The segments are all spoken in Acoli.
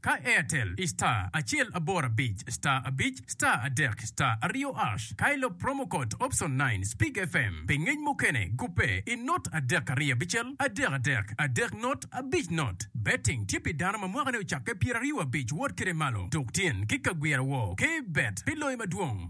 Ka Airtel i star acel aboro abic star abic star adek star aryo ash ka ilop promo code option nine speak FM pi ngec mukene gubbe i not adek aryo abicel adek adek adek not abic not Betting tye pi dano ma mwakane ocakke pyeraryo abic wot kede malo tuk tyen ki kagwira woo kbet pi loyo madwong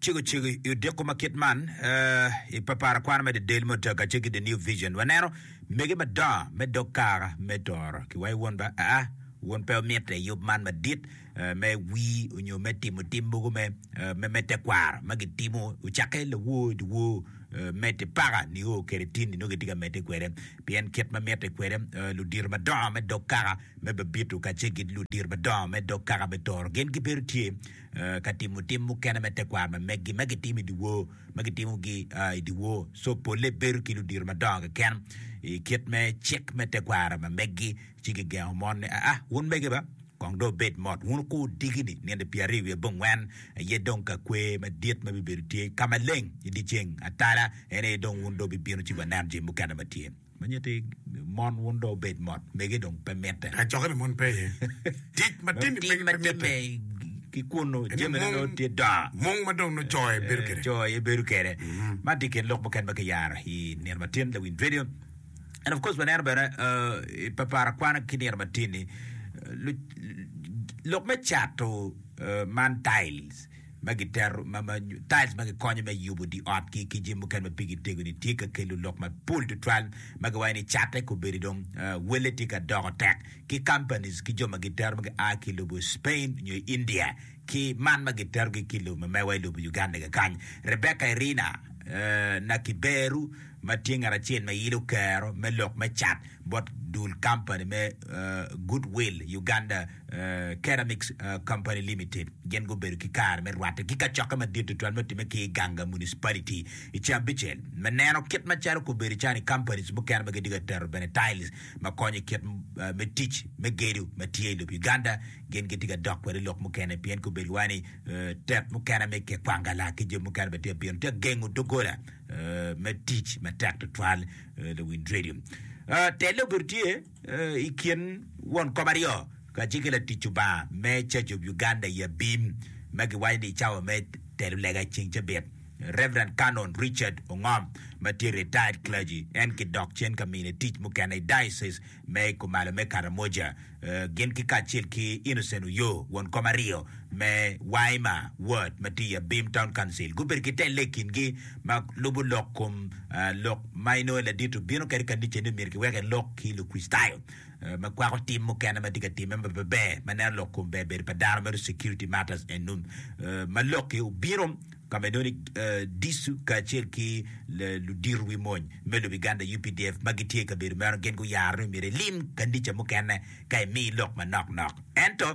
Cego cego i odiko ma kit man, i papara kwano me didel mo ta kacel ki The New Vision, waneno mege madongo me dog kara me toro ki wayo Won ba? Aa, Won pe omito i yub man madit me wir onyo me timo tim mogo me me tekwaro ma gitimo ocakke lawor i dyewor mete paka nio kede tini nongo gitye ka mete kwede pien kit ma mite kwede ludito madongo me dog kaka me babito kacel ki ludito madongo me dog kaka me toro gin gibedo tye ka timo tim mukene me tekwaro ma megi ma gitimo i dyewor, ma gitimogi i dyewor. Co polle bedo ki ludito madongo keken i kit me cik me tekwaro ma megi, ci gigengo mon ni, Aa, wun mege ba, kong dong wubed mot, wun wukur diki-ni nino pyeraryo wiye bongwen, aye dong ka kwer madit ma bibedo tye ka maleng i dyeceng atala, en aye dong wun dong wubibino ci wanen jami mukene ma tye. Ma nyeti mon wun dong obed mot, mege dong pe mitte. Ka cokke pa mon pe iye, tic ma Dong timi tim ma pe timme mitte. ki kunnu Ene jamine mung, nongo tye dongo. mung ma dong nongo co aye bedo kwede. Co aye bedo kwede. Man tye i kin lok mukene ma kiyaro i Nino ma Tin, The Wind Radio. And of course waneno bene uh, i papara kwana ki Nino ma Tin-ni, uh, lu- lok me cato uh, man tiles. ma gitero ma ma tiles ma gikonyo me yubo dye ot ki ki jami mukene ma pigi tego ni tye ka kelo lok mapol tutwal ma giwaco ni catte kobedo dong welle tye ka doko tek ki companies ki jo ma gitero ma gia ki lobo Spain nyo India ki man ma gitero gi ki lobo mamewa i lobo Uganda kakany Rebecca Irina Nakiberu ma tye ngat acel ma ilo kero me lok me cat bot dul company me Goodwill Uganda Ceramics Company Limited gin gubedo ki kare me rwatte ki kacokke madit tutwal ma otimme ki i Iganga Municipality i cabicel me neno kit macalo kobedo calo ni companies mukene ma gitye ka tero bene tiles ma konyo i kit me tic me gedo ma tye i lobo Uganda gin gitye ka dok kwede lok mukene pien kobedo wa ni tet mukene me kekwangalak ki jo mukene bene tye ka bino tye ka gengo doggola me tic matek tutwal Lawiny Radio te lobo tye I kin won kop aryo kacel ki latic Lubanga me Church of Uganda i abim ma giwaco ni Cawa me Telo Lega Ceng Cabit, Rev. Canon Richard Ongom ma tye retired clergy en ki dok cen ka mine tic mukene i Diocese me Kumalo me Karamoja gin ki kacel ki Innocent Oyoo won kop aryo me Waima Ward ma tye i abim Town Council gubedo ki te lega i kingi ma lubo lok kom lok ma inongo ladit obino kwede i kanica ni myero kiwek elok ki Lukricitayo ma kwako tim mukene ma tye ka timme ma pe ber ma neno lok kom ber bedo pa dano mere security matters and num ma lokki obino ka ma inongo ni dicu kacel ki ludito wi mony me lobo Uganda UPDF ma gitye i kabedo meno gin guyaro ni myero ilim kanica mukene ka imi lok manok nok ento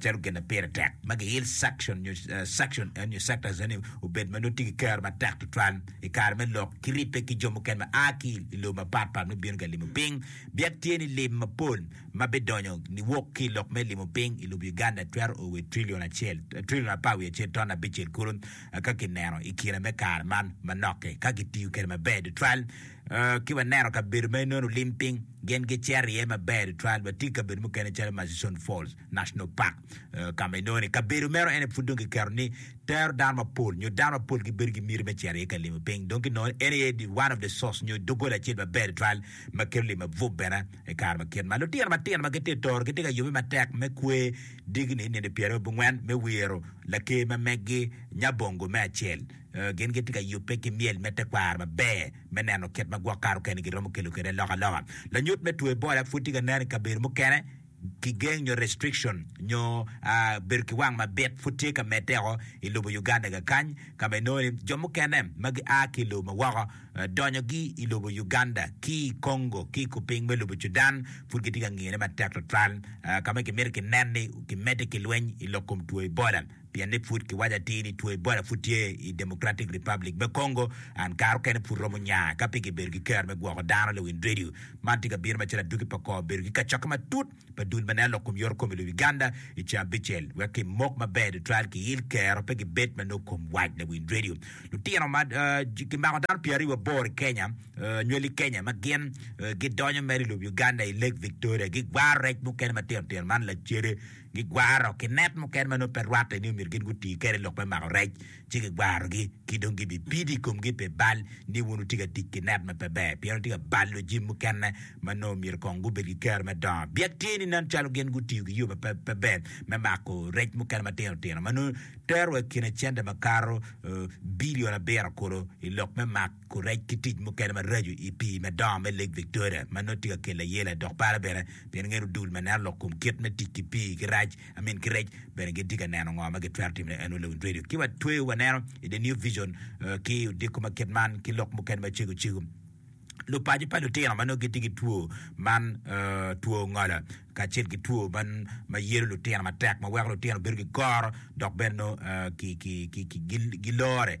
calo gin ma pire tek ma giil section nyo section nyo sectors eni obed ma nongo tye ki kero matek tutwal i kare me lok ki ribbe ki jo mukene ma a ki i lobo mapat pat ma bino ka limo piny biak tye ni lim mapol ma bidonyo niwok ki i lok me limo piny i lobo Uganda twero o wa trillion acel trillion apar wiye acel ton abicel kulu ka kineno i kine me kare man manok-ki ka kitiyo kwede maber tutwal. Ki waneno kabedo ma inono olim piny, gin gicero iye maber tutwal. Watye i kabedo mukene calo Murchison Falls National Park, ka ma inongo ni kabedo meno en aye pud dong kiketo ni tero dano mapol nyo dano mapol gibedo ki miti me cito iye ka limo piny. Dong kinongo ni en aye one of the source nyo doggola acel maber tutwal ma kelo limo abup bene i kare ma kit man. Lutino matino ma gitye ka toro gitye ka yubbe matek me kwe digni nino pyerabongwen me wiro Laker ma meggi Nyabongo me acel. Gin gitye ka yubbe ki myel me tekwaro maber me neno kit ma gwok kare okene giromo kelo kwede alokaloka. Lanyut me twe Ebola pud tye ka nen i kabedo mukene. Kigeng nyo restriction nyo bedo ki wang mabit pud tye ka medde woko i lobo Uganda kakany ka ma inongo ni jo mukene ma gia ki i lobo ma woko donyogi i lobo Uganda ki i Congo ki i kupiny me lobo Cudan pud gitye ka ngiyone matek twatwal ka ma kimito kinen ni kimedde ki lweny i lok kom two Ebola. Pien ni pud kiwaco atir ni two Ebola pud tye i Democratic Republic me Congo, and kare okene pud romo nya ka pe gibedo ki kero me gwoko dano le wind radio man tye ka bino macalo aduki pa kor bedo ki kacokke matut pa dul ma nen lok kom yorokom i lobi Uganda i ceng abicel wek ki mok maber tutwal ki il kero pe gibed ma noo kom wac le wind radio lutino ma ki mako dano pyeraryo aboro i Kenya nywel i Kenya ma gin gidonyo mere i lobi Uganda i Lake Victoria gi gwaro rec mukene matino tino man lacede gigwaro ki net mukene ma nongo pe rwatte ni omyero gin guti kwede lok me mako rec, ci gigwarogi, ki dong gibipido i komgi pi bal ni wun wutye ka tic ki net ma pe ber, pien wutye ka balo jami mukene ma nongo myero kong gubed ki kero me dongo. Byek tye ni nen calo gin gutiyo ki yo ma pe ber me mako rec mukene matino tino ma nongo terowa i kin acente makato bilion abiro kulu i lok me mako Kurec ki tic mukene maraco i pii madongo me Lake Victoria ma nongo tye ka kelo ayela dok par bene pien ngeto dul ma neno lok kom kit me tic ki pii ki rac I mean ki rec bene gitye ka neno ngo ma gitwero timo ne Annual Lowndes Radio ki wa tweyo wa neno i The New Vision ki odiko ma kit man ki lok mukene ma cego cego lupaco pa lutino ma nongo gitye ki two man two ngola kacel ki two man ma yelo lutino matek ma weko lutino bedo ki koro dok bene nongo ki ki ki gilore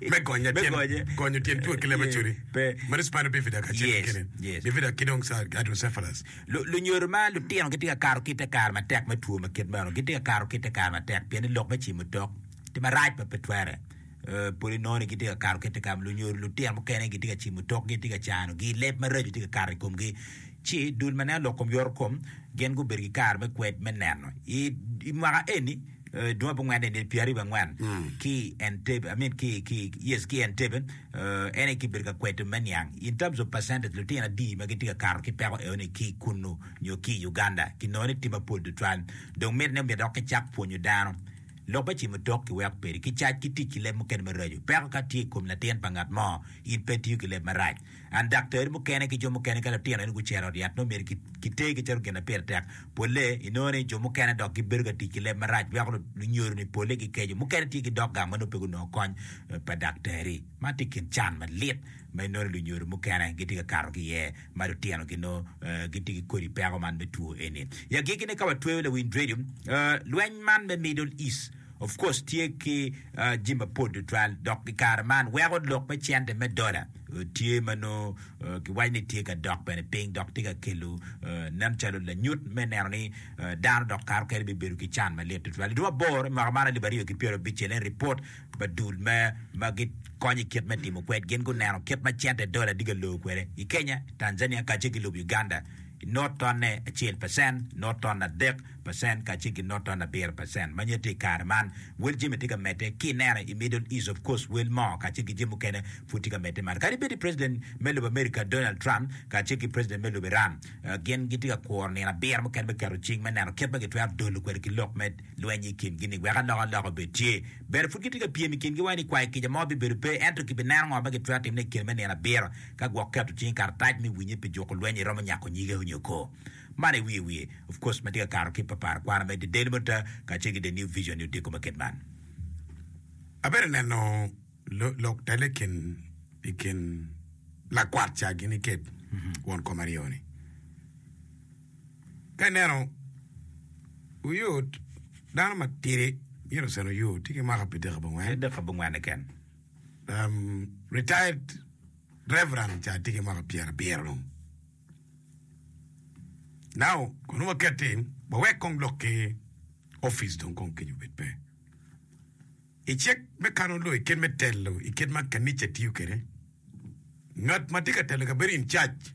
me gonye me gonye gonyo tyen tuo ki leba curi pe mari spina bifida ka cek kene yes bifida ki dong sa hydrocephalus lunyodo ma lutino gitye ka kato kite kar matek me tuo ma kit meno gitye ka kato kite kar matek pien ni lok me cimo tok ti marac ma pe twere poli nongo ni gitye ka kato kite kar lunyodo lutino mukene gitye ka cimo tok gitye ka cano gi leb maraco tye ka kato i komgi ci dul ma nen lok kom yoro kom gin gubedo ki kare me kwed me neno i mwaka eni dwong ape ongwene nel pyera ariyo angwen ki Entebbe, I mean ki ki yes ki Entebbe uh, en aye kibedo ka kweto me niang in terms of percentage lutino adi ma gitye ka kato ki peko eoni ki kunu nyo ki i Uganda kinongo ni tye mapol tutwal dong miti ni omyero dok kicak pwonyo dano lok me cimo tok kiweko kwede ki cac ki tic ki leb mukene maraco peko ka tye i kom latin pa ngat mo in pe itiyo ki leb marac And dakter mukene ki jo mukene ka litino eni gucero ot yat nongo myero kitegi calo gin ma pire tek. Pole inongo ni jo mukene dok gibedo ka tic ki leb marac weko lunyodo-ni pole gikeco. Mukene tye ki dog gang ma nongo pe gunongo kony pa dakter-ri. Man tye i kin can malit ma inongo ni lunyodo mukene gitye ka kato ki iye ma litinogi nongo gitye ki kodi peko man me two eni. I agikki-ni ka watweyo Lawiny Radio, lweny man me Middle East, Of course tye ki jami mapol tutwal dok i kare man weko lok me cente me dola tye ma nongo kiwaco ni tye ka dok bene piny dok tye ka kelo nen calo lanyut me neno ni dano dok kato kene bibedo ki can malit tutwal. I dwe aboro i mwaka man alip aryo ki pyero abicel en ripot pa dul me ma gikonyo i kit me timo kwed gin guneno kit ma cente dola tye ka lor kwede i Kenya, Tanzania kacel ki lobo Uganda. not tonne acel pacen, not ton adek pacen, kacel ki not ton abiro pacen. Ma nyette i kare man, wel jami tye ka medde. Ki ineno i Middle East, of course, wel mo kacel ki jami mukene pud tye ka medde malo. Kadi bed ni president me lobo America, Donald Trump, kacel ki president me lobo Iran, gin gitye ka kuro nino abiro mukene me keto cing me neno kit ma gitwero dolo kwede ki lok me lweny i kingi-ni wek alokaloka obed tye. Bene pud gitye ka pyem i kingi wai ni kwayo kica mo bibedo pe, ento kibineno ngo ma gitwero timone i kine me nino abiro. Ka gwok keto cing i karatac me winye pi juko lweny iromo nyako nyige onyo kor man i wiye wiye of course matye ka kato ki paparo kwano me the daily monitor kacel ki the new vision ni odiko me kit man. Abedo neno lok tele i kin i kin lakwat ca gini kit won kom aryo ni ka ineno oyot dano matidi myero osen oyot tye ki mwaka pi dek abongwen. Retired Reverend ca tye ki mwaka pyera abiro dong now kono wakette wawek kong lok ki office dong kong kenyo obed pe i cik me kano loyo i kit me telo i kit ma kanica tiyo kwede ngat ma tye ka telo kabedo in charge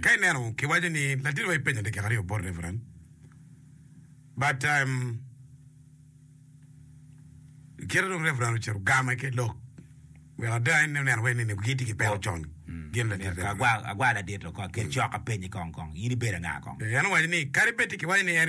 Ka ineno ki waco ni ladit wa ipenya dakika aryo bot reverend but um, kite dong reverend ocito game ki lok wek ada en oneno wai nini gitye ki peko con gin ladit Ka reverend agwa agwa ladit kong ki cok apenyi kong kong in ibedo anga kong? en owaco ni kadi bed tye ki waco ni en